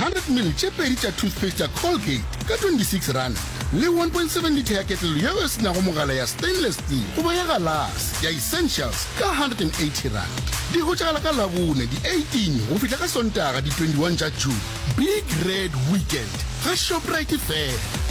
100 ml tše pedi tša toothpaste ya Colgate ka R26 le 1.7 litha ya ketlelo yeo e se nago mogala ya stainless steel goba ya galase ya Essentials ka R180. Di hwetšagala ka Labone di 18 go fihla ka Sontaga di 21 tša June. Big Red Weekend ga Shoprite fela.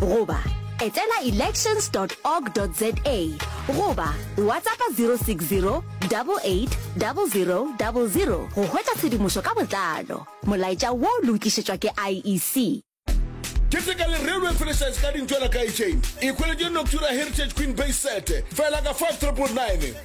goba etela elections org za goba WhatsAppa 060 88 0000 go hwetša tshedimošo ka botlalo. Molaetša wo le o tlišetšwa ke IEC. keteka le railway franchise ka dintšwela kae chain e hweletše noctura heritage queen bay sete fela ka 5999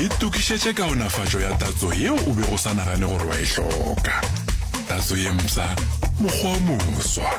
Itokišetše kaonafatšo ya tatso yeo o bego o sa nagane gore wa e hloka. Tatso ye mpsha, mokgwa o moswa.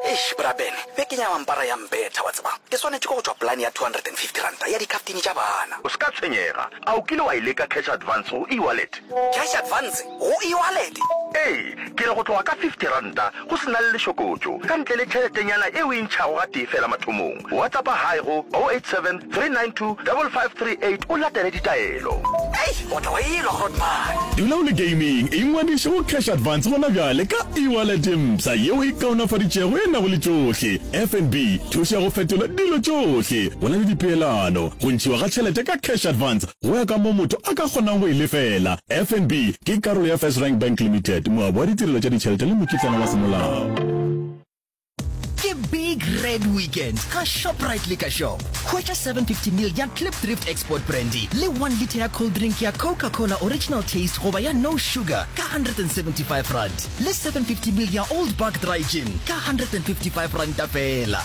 Eish bra Ben, beke ya mampara ya mbetha wa tseba. Ke swanetše ke go tšwa polane ya R250 ya dikhaftine tša bana. O se ka tshwenyega. A o kile wa e leka cash advance go e-wallet? Cash advance? Go e-wallet? Ee, ke re go tloga ka fifty ranta go se na le lešokotšo, ka ntle le tšheletenyana e o e ntšhago gatee fela mathomong. Whatsappa Hi go 0873925538 o latele ditaelo. Hei, o tla go e nwa Grootman. Dula o le gaming, ingwadiše go Cash Advance gona bjale ka e-wallet e mpsha ye o e kaonafaditšego e nago le tšohle, FNB, thušo ya go fetola dilo tšohle, go na le dipeelano, go ntšhiwa ga tšhelete ka Cash Advance, Go ya ka mo motho a ka kgonang go e lefela, FNB ke karolo ya FirstRand Bank Limited, moabi wa ditirelo tša ditšhelete le mokitlana wa semolao. Ke Big Red Weekend ka Shoprite Liquor Shop. Hwetša 750 ml ya Klipdrift Export Brandy le one litre ya cold drink ya Coca-Cola Original Taste goba ya No Sugar ka R175 le 750 ml ya Old Buck Dry Gin ka R155 feela.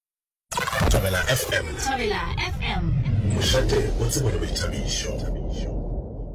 Thabela FM. Thabela FM. Mošate o tsebo le boithabišo.